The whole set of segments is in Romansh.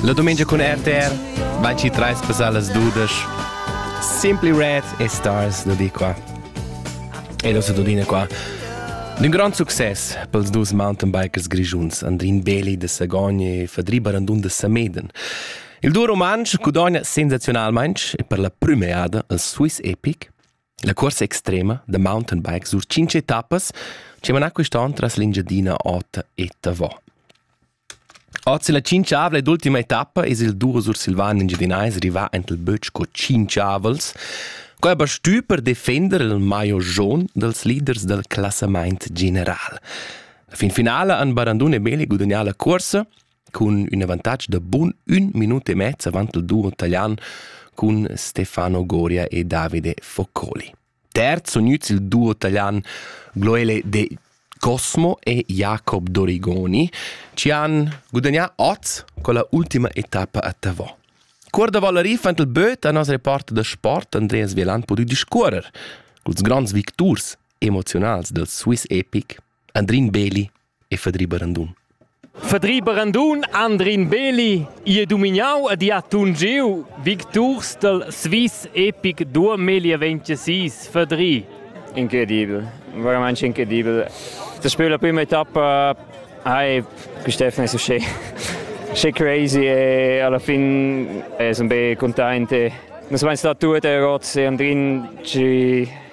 La domenica cun RTR, 23 pesalas dudesch. Simply Red e Stars da di qua. E da Dudina qua. D'un grand success pels dus mountainbikers grischuns Andrin Beli de Sagogna e Fadri Barandun de Sameden. Il duo rumantsch gudogna sensazionalmain e per la prüma eada al Swiss Epic La cuorsa extrema da mountainbike sur tschintg etappas che mana quest'on tras l'Engiadina ota e Tavò. Oz la tschintgavla ed ultima etappa es il duro sursilvan engiadinais rivà ent il bötsch co tschintgavels, co aber stü per defender il maio jaun dels leaders del classamaint general. La fin finala han Barandun e Beli gudagnà la cuorsa cun ün avantatg da bun ün minut e mezz avant il duo italian cun Stefano Goria e Davide Foccoli. Terz sun gnüts il duo italian Gloele de Cosmo e Jacob Dorigoni ci han gudagnà oz con la ultima etappa a Tavò. Cuor da Valeri fand il böt a nos reporter da sport Andreas Vieland pudü discuorrer culs grands victurs emoziunals del Swiss Epic Andrin Beli e Fadri Barandun. Fadri Barandun, Andrin Beli, i è dominau ed i ha tungiu victurs dal Swiss Epic 2026. Fadri. Incredibel, veramente incredibel. Das Spiel der prima etappa hai quest'Steffen è uscì schi crazy e alla fin è sempre contente. Non sono mai stato tutte errori, Andrin ci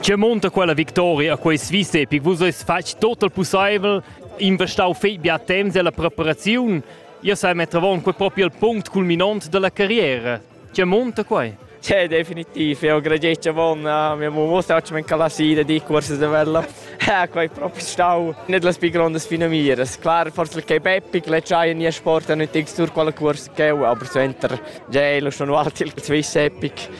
Che monta quella victoria a quei svista epic? Vus eis fatg tot il pusseivel, investau fei bia temps ella preparaziun. Io sai mettere avon quei proprio il punct culminant della carriera. Che monta quei? Cioè, definitiv, io gradesce von, uh, mia musa oggi mi calasida di corsi de vella. Eh, quei proprio stau, nicht las più grandes finamiras. Klar, forse il K-Peppig, le c'hai nie sport, non ti sur qual corsi che, aber suenter, già, lo sono altri il Swiss Epic.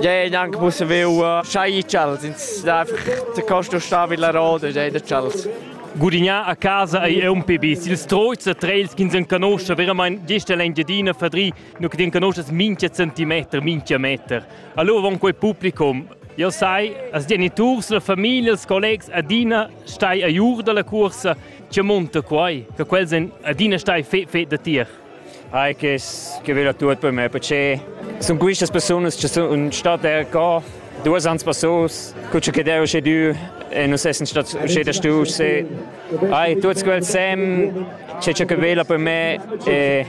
Ja, neanche mussen wir schai ch'els ins da costo sta vid la roda, ja, da ch'els. Gurignà a casa ei un pebis. Il stroizer treils ch'ins enconosce veramente gesta l'Engiadina fadri, nu che enconosces minchia centimeter, minchia meter. Allora von quel publicum, io sai, as geniturs, la famiglia, els collegs adina stai a jur dalla cursa, che monta quai, che quels en adina stai fe fe da tier. Hai che che vela tut per me perché sun quistas persunas che sun state er qua duos ans passos cuccio che deu sche du e nus essen stat sche da stu se ai tuts quels sem c'è c'è che vela per me e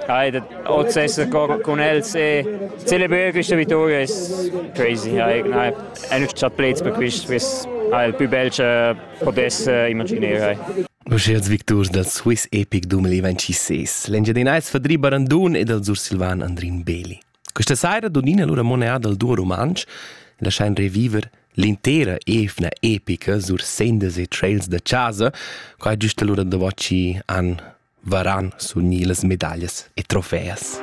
ai da oz essere con els e celebrare questa vittoria is crazy ai ai ein chat plets per quist quist ai il più bel che potesse immaginare ai Uschiers victurs dal Swiss Epic 2026. L'Engiadinais Fadri Barandun e dal Sursilvan Andrin Beli. Questa saira donina lura monea dal duo rumantsch e laschain reviver l'intera evna epica sur sendas e trails da chasa, qua giusta lura da voci an varan suni las medaglias e trofeas.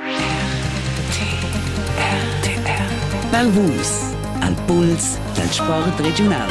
Val Vus al puls dal sport regiunal.